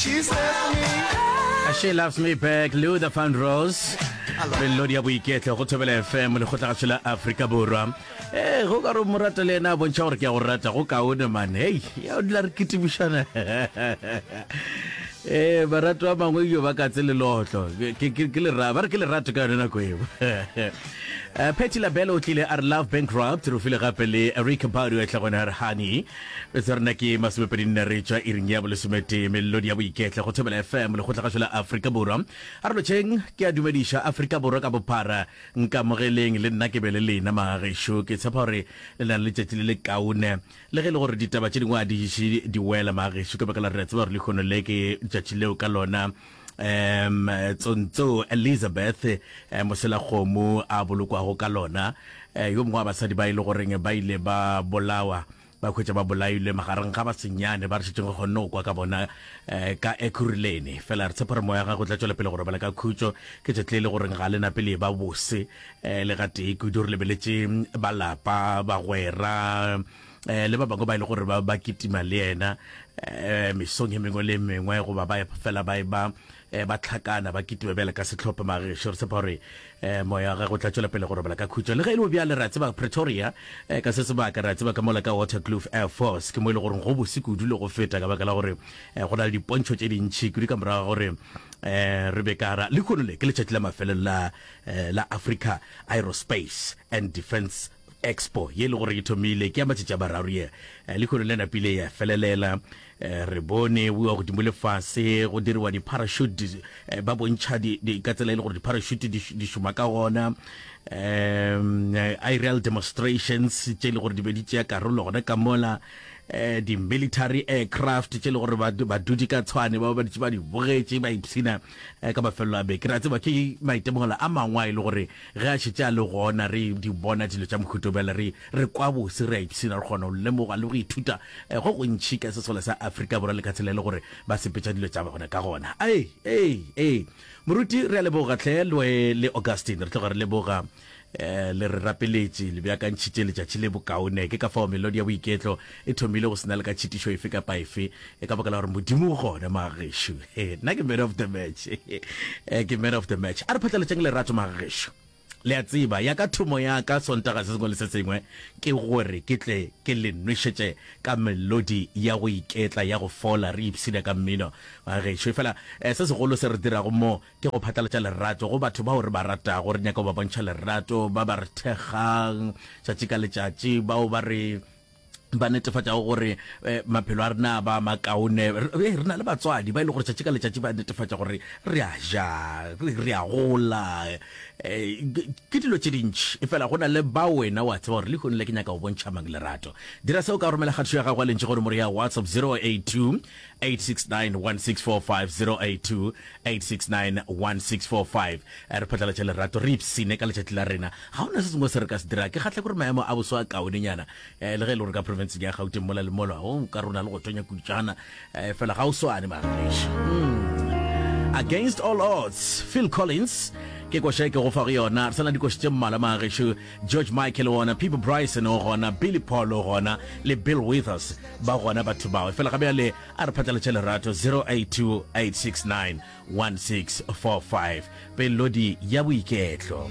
She Loves Me Back, Luther Vandross. melodi ya boiketlo go thobela fm lekgotlagatsho la aforika borwa ee go ka re mo rata le ena a bontšha gore ke ya go rata go kaone mane hei ya o dula re ketibušana ee barato ba mangwe jo ba katse lelotlo ba re ke lerato ka yone nako eo eh, petty labelo o tlile a re love bankrupt re file gape le rick badu a tlagone a re honey Tsa rena ke masomepedi nne re tšwa iring ya bolesometee melodi ya boiketla go thobela FM lekgotlagatšo la Afrika Borwa a re lotšheng ke a dumediša Afrika Borwa ka bophara nkamogeleng le nna ke be le lena magešo ke tshepa gore le na le letšatši le le kaone le ge e le gore ditaba tše dingwe a di diše di wela magešo ka baka la re a tseba gore lehono le ke tšatši leo ka lona um tsontso elizabeth um moselakgomo a bolokwago ka lona um yo mongwe wa basadi ba e le goreng ba ile ba bolawa ba hwetša ba bolailwe magareng ga basenyane ba re šetšeng re kgonne go kwa ka bona um ka ekuruleni fela re tshepa re moya gago tla tšwela pele go robala ka khutšo ke tšatli le e le goreng ga le nape le ba bose um le gatee kudu re lebeletše balapa bagwera eh, le ba bangwe ba e le gore ba ba kitima le yena eh, mesong e mengwe le e mengwe goba ba fela ba e ba eh, ba tlhakana ba kitima bjale ka setlhopha magesho re tsepa gore eh, moya ga go tla tswela pele go robala ka khutšo le ge e le bjale re a tseba pretoria eh, ka se sebaka re a tseba ka mola ka watercloof air force ke mo e le gore go bose kudu le go feta ka baka la gore eh, go na le dipontšho tse dintšhi kudu ka morago gore eh re be kara le khonole ke letšatši la mafelelo la eh, la Africa Aerospace and Defence Expo ye e le gore e thomile ke ya matšatši a mararo ye, eh, lehono le napile ya felelela. Eh, re bone bua godimo le fase go diriwa di-parachute, eh, ba bontšha di, di, ka tsela e le gore di-parachute di, di šoma ka gona um aerial demonstrations tše e le gore di be di tšea karolo gona ka mola um di-military aircraft tše e le gore badudi ka tshwane ba ba ditše ba di bogetše ba ipshina eh, ka mafelelo a beke ra tseba ke maitemogelo a mangwe a e le gore ge a šetse a le gona re di bona dilo tša mohuto bjale re re kwa bose re a ipshina re kgona go lemoga le go ithuta eh, go gontšhi ka sesole sa afrika borwa le ka tsela e le gore ba sepetša dilo tša bona ka gona ee ee ee moruti re a leboga tlhe le augustine re tloga re leboga Eh, le re rapeletše le bjakantšhitše letšatši le bokaone ke ka fao melodi ya boiketlo e thomile go sena le ka tšhitišo efe kapa efe e ka baka la gore modimo o gone magešu nna ke man of the match eh, ke man of the match a re phatlaletšeng lerato magešu le a tseba ya ka thomo ya ka sontaga se sengwe le se sengwe ke gore ke tle ke le nwešetše ka melodi ya go iketla ya go fola re ipshina ka mmino magešu e fela eh, se segolo se re dirago mo Ke go phatlalatša lerato go batho bao re ba ratago. Re nyaka go ba bontšha lerato, ba ba re thekgang tšatši ka letšatši, bao ba re ba netefatšago gore eh, maphelo a rena a ba makaone. Re eh, re na le batswadi ba e le gore tšatši ka letšatši ba netefatša gore re a ja, re re a gola. Eh, ke- Ke dilo tše dintši efela go na le ba wena wa tseba gore lehong le ke nyaka go bontšha mang lerato. Dira seo ka go romela kgatišo ya gago ya lentši gore more ya WhatsApp 082 86916450828691645 re phatlalatša lerato re ipsene ka letšatši la rena ga ona se sengwe se re ka se dira ke kgatlha kore maemo a boso a kaonenyana eh, le ge e le gore ka profenseng ya gauteng mola le mola o oh, ka rona le go tonya kutšana eh, fela ga o swane mageša hmm. against all odds phil collins ke koša e ke go fa go yona re sana dikoši tše mmala magešu George Michael o gona, Peabo Bryson o gona, Billy Paul o gona, le Bill Withers ba gona batho bao. Efela ga bjale a re phatlaletše lerato 0828691645 pelodi ya boiketlo.